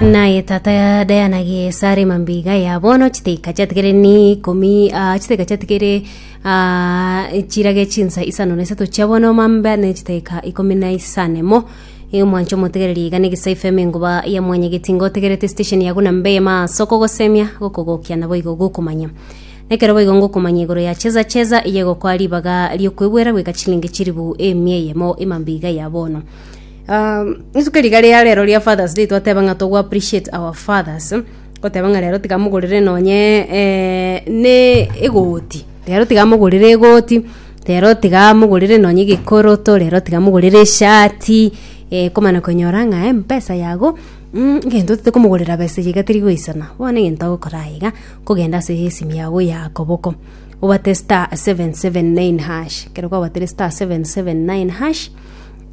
Naye tata ya Diana gie esare mambiga ya bono chiteka chiatigere ni ikomi ah, chiteka chiatigere ah, chirage chinsa isano na isato chia bono mambe ne chiteka ikomi na isanemo Ee, mwancho motegereri iga negisa ifm engoba ya mwanyegeti ngotegerete station yago na mbe ma soko gosemia gokogokia na boigo gokomanya nekero boigo ngokomanya igoro ya cheza cheza iye gokoa ribaga riokwebwera gweka chilingi chiribu emia eyemo emambiga ya bono rituko riga ria rero ria Fathers Day twateba ng'a togo appreciate our fathers, goteba ng'a rero tiga mogorere nonye eh, ne egoti, rero tiga mogorere egoti, rero tiga mogorere nonye egekoroto, rero tiga mogorere eshati, eh, komana konyora ng'a empesa yago mm, egento otete komogorera besa eyio iga teri goisana, bono egento agokora aye iga, kogenda ase esimu yago ya koboko, obwate star seven seven nine hash, ekero kwabatire star seven seven nine hash.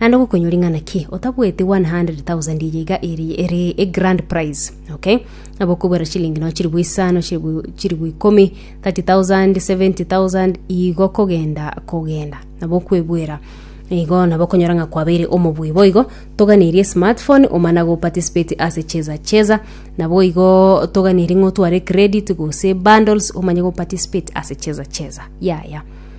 Naende gokonyori ng'a naki otabueti 100,000 eye iga eri ere e grand prize okay nabo okobwera chilingi no chilibu isano chilibu chilibu ikomi 30,000 70,000 igo kogenda kogenda nabo okwebwera igo nabo okonyora ng'a kwabeire omobui boigo toganeiri esmartphone omana go participate ase cheza cheza nabo igo toganeiri ng'a otware credit gose bundles omanye go participate ase cheza cheza yaya.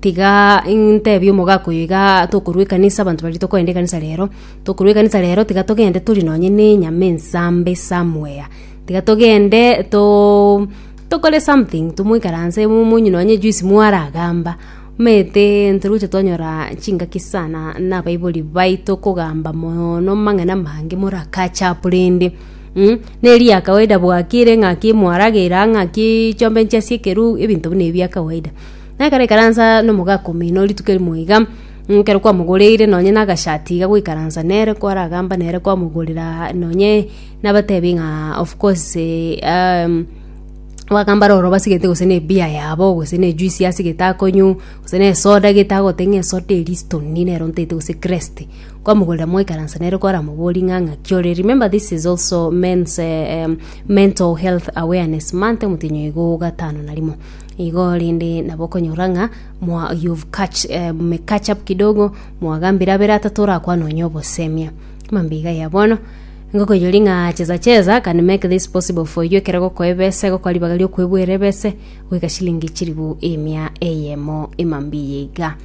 Tiga intebie omogaka oyo iga tokorwa ekanisa abanto baria tokoenda ekanisa rero, tokorwa ekanisa rero tiga togende tori nonye na enyama ensambe somewhere tiga togende too tokore something tomoikaranse momonywe nonye ejuice mwaragamba omanyete ntoragocha twanyora chingaki sana na abaibori baito kogamba moono amang'ana amange more akache apo rende na eria kawaida bwakire ng'aki mwaragera ng'aki chombe nchiasie ekeru ebinto buna ebi bia kawaida. Na ekero aikaransa nomogaaka omino rituko erimo iga, ekero kwamogoreire nonye nagashati iga goikaransa nere kwaragamba nere kwamogorera nonye nabatebi ng'a of course um bagamba roro basigete gose ne beer yabo gose ne ejuice asigete akonywa gose ne esoda gete agote ng'a esoda eria stoni nero ntaete gose krest kwamogorera mwaikaransa nere kwaramoborie ng'a ng'aki ore remember this is also men's mental health awareness month omotenyo igo gatano na rimo. Igo rende nabo okonyora ng'a mwa you've catch, eh, me catch up kidogo mwagambire abere atato orakwane onye obosemia mambiga ya bono ngokoyori ng'a cheza cheza can make this possible for you ekero gokoa ebese gokoa ribaga riokwebwera ebese goika shilingi chiribu emia eyemo emambiya iga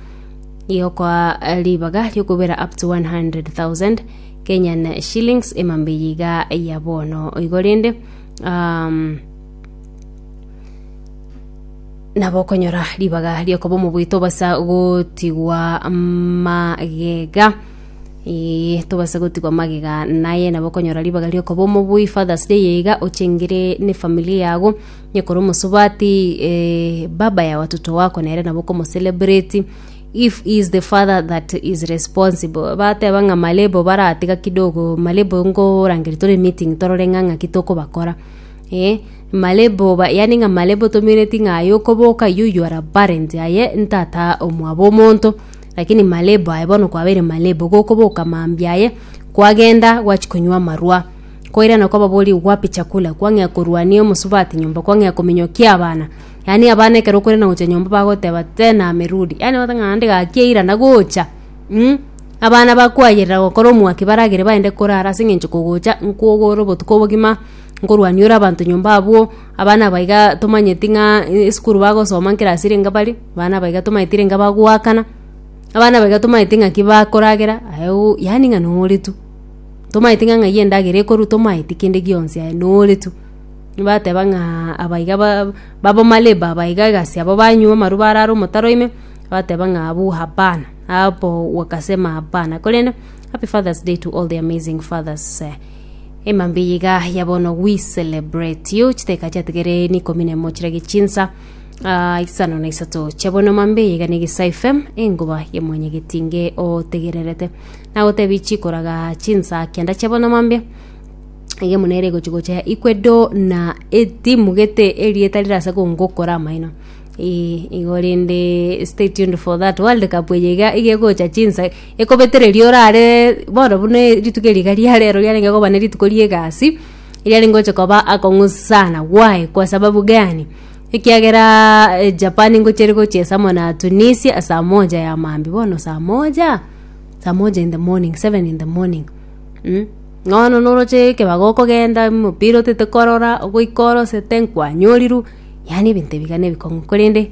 igo kwa ribaga riokwebwera up to 100,000 Kenyan shillings emambiya iga ya bono igo rende um, nabo okonyora ribaga riokoba omobuya tobasa gotigwa magega ee tobasa gotigwa magega naye nabo okonyora ribaga riokoba omobuya fathers day eye iga ochengire ne efamiri yago onye kore omosubati ee baba yago watoto wako nere nabo okomocelebrati if he is the father that is responsible bateba ng'a malebo baratiga kidogo malebo nkorangeria tore emiting torore ng'a ng'aki tokobakora. Ee, Malebo, yaani ng'a Malebo tomenyereti ng'a aye okoboka iye oyio are barent aye ntata omwabo omonto, lakini Malebo aye bono kwabeire Malebo gokoboka mambia aye kwagenda gwachi konywa amarwa. Koirana kwababoria wapi chakula, kwang'ea korwania omosubati nyomba, kwang'ea kominyokia abana, yaani abana ekero okoirana gocha nyomba bagoteba tena amerudi, yaani obote ng'a naende gaki airana gocha mm abana bakwayerera gokora omwaki baragere baende korara ase eng'encho kogocha nkogora obotuko obogima. nkorwania ore abanto nyomba abwo, abana aba iga tomanyeti ng'a eh, esukuru bagosoma nkera asire enga bare, abana aba iga tomanyeti renge bagoakana, abana aba iga tomanyeti ng'aki bakoragera, aye oo yaani ng'a nore tu. Tomanyeti ng'a ng'ai endagera ekorwa tomanyeti kende gionsi aye nore tu. Nibateba ng'aa aba iga ba baba maleba aba iga egasi aba banywa amarwa barara omotaro ime, bateba ng'a abwo hapana, hapo wakasema hapana, korende happy father's day to all the amazing fathers. Emambia eye iga ya bono we celebrate you chiteka chiatigere ni ikomi na emo chirage chinsa ah, isano na isato chia bono mambia eye iga ne gisa fm engoba ya mwanyagetinge otegererete nagotebi chikoraga chinsa kenda chia bono mambia iga muna ere gochi gocha ikwedo na etimugete erieta rirase kongokora amaino Eh, igo rende stay tuned for that world cup eye iga iga egocha chinsa Ekobetereria orare bono buna e- rituko eri iga ria rero riarenge koba nerituko ri'egasi, eriarenge gocha koba akong'u sana. Why? Kwa sababu gani? Ekiageraa eh, Japan ngochia ere gochiesa amo na Tunisia saa moja ya maambia. Bono saa moja? Saa moja in the morning, seven in the morning mm. Bono noroche ekebago okogenda omopira otete korora, ogoika orosete, nkwanyoriru, yaani ebinto ebiga na ebikong'u korende.